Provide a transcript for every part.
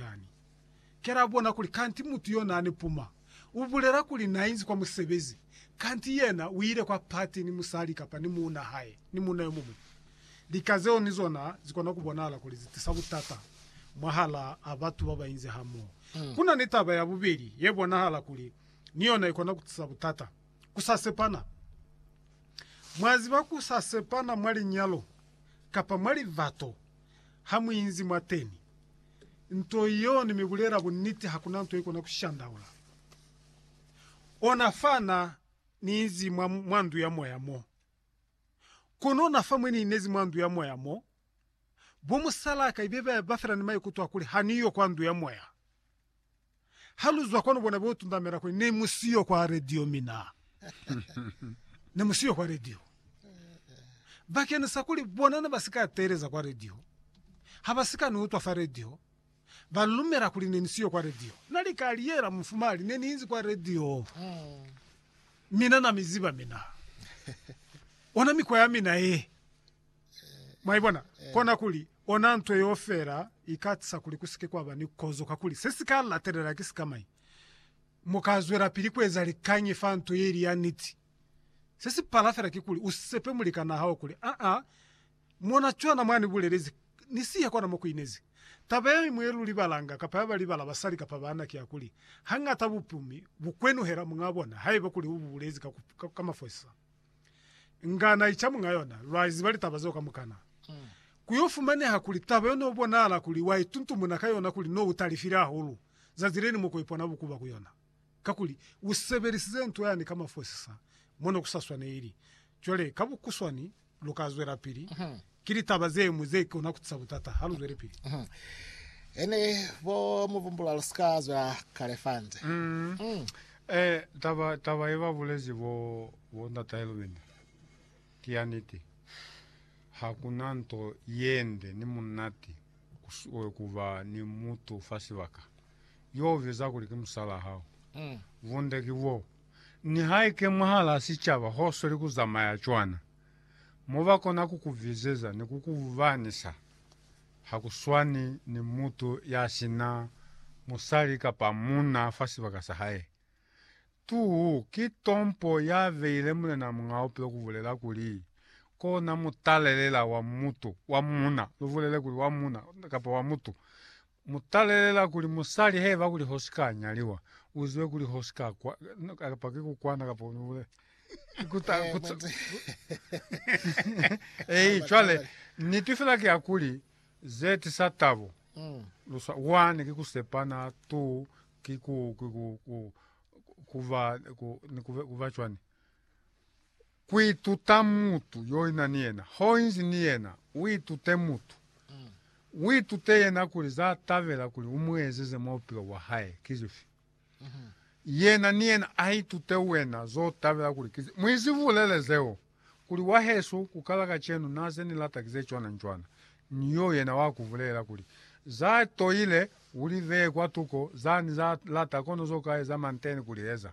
Jordani. Ki la bona kuli kanti mutu yo nani puma u bulela kuli na inzi kwa musebezi, kanti yena u ile kwa pati ni musali kapa ni muuna hae ni muuna yo muñwi. Lika zeo ni zona zi kona ku bonahala kuli zi tisa butata mwahalaa batu ba ba inzi hamoho. Ku na ni taba ya bubeli ye bonahala kuli ni yona i kona ku tisa butata, ku sa sepana. Mwa ziba ku sa sepana mwa linyalo kapa mwa livato ha mu inzi mwateni. Nto yeo ni mi bulela bunniti hakuna nto ikona ku shandaula ona fa na ni izi mwa, mwa ndu ya moya mo. Kono na fa mwe ni inezi mwa ndu ya moya mo, bo musalaka ibe ba, ba fela ni maikuto a kuli ha ni yo kwa ndu ya moya. Ha lu zwa kwanu bona bo tundamela kuli, Ne mu siyo kwa radio mina. Ne mu siyo kwa radio. Bakeni sa kuli bona ne ba si ka teeleza kwa radio, ha ba si ka ni utwa fa radio, ba lumela kuli ne ni siyo kwa radio. Na li ka liyela mufumali, Ne ni inzi kwa radio. Mina na mi ziba mina. Ona mikwa ya mina ye. Mwaibona? Kona kuli, ona nto yeo fela ikatisa kuli kusike kwaba ni kozo, kakuli se si ka latelela ki sikamañi? Mu ka zwelapili kueza likañi fa nto ye ili ya niti? Se si pala fela kikuli usepe mulikanaa hao kuli, Aa, mona cwana mwa ni bulelezi, ni siya kona mo kuinezi. Taba ye ñwi ye lu libalanga, kapa ya ba libala basali kapa baana, ki ya kuli, Hañata bupumi bu kwenuhela muñaa bona haiba kuli u bu bulezi ka mafosisa. Nga na ica muñ'a yona. Lwa iziba litaba zeo kamukana. Ku yo fumaneha kuli taba yo no bonahala kuli wa ituntumuna ka yona kuli no u talifile hahulu, zazi le liñwi ko ipona bukuba ku yona. Kakuli, u sebelisize nto yani ka mafosisa mo ne ku sa swaneli. Cwale, ka bukuswani, lu ka zwelapili Ki litaba ze ñwi ze kona ku tisa butata ha lu zwelepili. He ne bo mu bumbula lu si ka zwela kale fa nze. Eeh, taba, taba ye ba bulezi bo, bo Ndata Elwini ki ya niti. Ha ku na nto ye nde ni munati ku, ku ba ni mutu fa sibaka yo u biza kuli ki musalaa hao. Bunde ki boo, nihaike mwahalaa sicaba ho sweli ku zamaya cwana. mobakona kukuvizeza ni kukuvanisa hakuswani ni mutu yasina musali kapa munna fa sibaka sahae. Tu ki tompo yabeile Mulena Muñaa Bupilo kubulela kuli, Kona mutalelela wa mutu, wa munna, lubulele kuli wa munna kapa wa mutu, Mu talelela kuli musali heba kuli hosi ka nyaliwa, uzibe kuli hosi ka kwa, no, kapa ki kukwana kapa unibule. Kuta, Eh, kuta, mwenzi. Ei, cwale, niti fela ki ya kuli, ze tisa tabo. Mm. Lusa, one, ki kusepana, two, ki ku, ki ku, ku, ku, kuba, ku, ni kuba, kuba cwani. Ku ituta mutu yo ina ni yena. Ho inzi ni yena, u itute mutu. U itute yena kuli za tabela kuli u mu ezeze mwa bupilo bwa hae ki zifi. Yena ni yena a itute wena zo tabela kuli ki zifi. Mu izibulele zeo, kuli, Wahesu, ku kala kacenu na ze ni lata ki ze cwana ni cwana. Ni yo yena wa ku bulela kuli, Za toile, u li bee kwa tuko, za ni za lata, kono zo ka eza manteni ku li eza.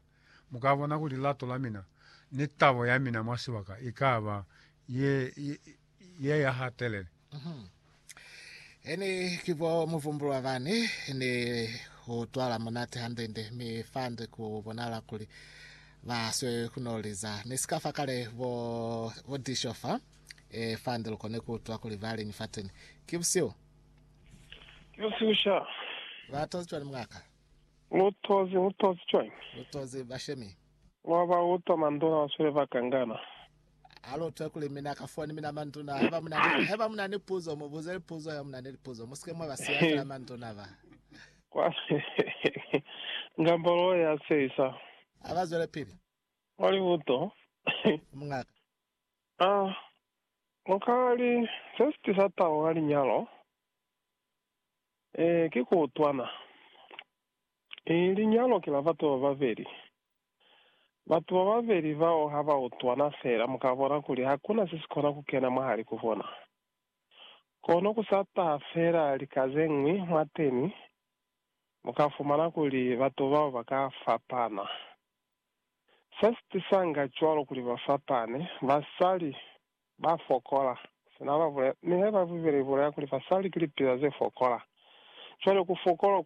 Mu ka bona kuli lilato la mina ni tabo ya mina mwa sibaka i ka ba ye, ye ya hatelele. Mhm. Eni ki bo muvumbulwa bani ni ku twala munati hande-nde, mi fande ku bonala kuli ba swe ku no liza. Ni si ka fa kale bo, bo disho fa, e, fande lu kone ku utwa kuli ba liñi fateni. Ki busihu. Ki busihu sha. Ba tozi cwani mwa ka? Lu tozi, lu tozi cwañi? Lu tozi, bashemi. Lwa ba utwa manduna ba swile ba kangana. Ha lu utwe kuli mina ka foni, mina manduna, haiba muna ni, haiba muna ni puzo, mu buze lipuzo, haiba muna ni lipuzo. Mu sike mwa ba siya fela manduna ba. Kwa ngambolo ya sisa. Ha ba zwelepili. Mwa libuto. Mungaka. Ah, lu ka li, se si tisa tabo ka linyalo. Ee, ki ku utwana. I, linyalo ki la batu ba babeli. Batu ba babeli bao ha ba utwana fela, mu ka bona kuli hakuna se si kona ku kena mwahali ku bona. Kono ku sa taha fela lika ze ñwi mwateni, mu ka fumana kuli batu bao ba ka fapana. Se si tisanga cwalo kuli ba fapane, basali Ba fokola. Sina ba bule, mi he ba bibele ibulela kuli basali ki lipila ze fokola. Cwale ku fokola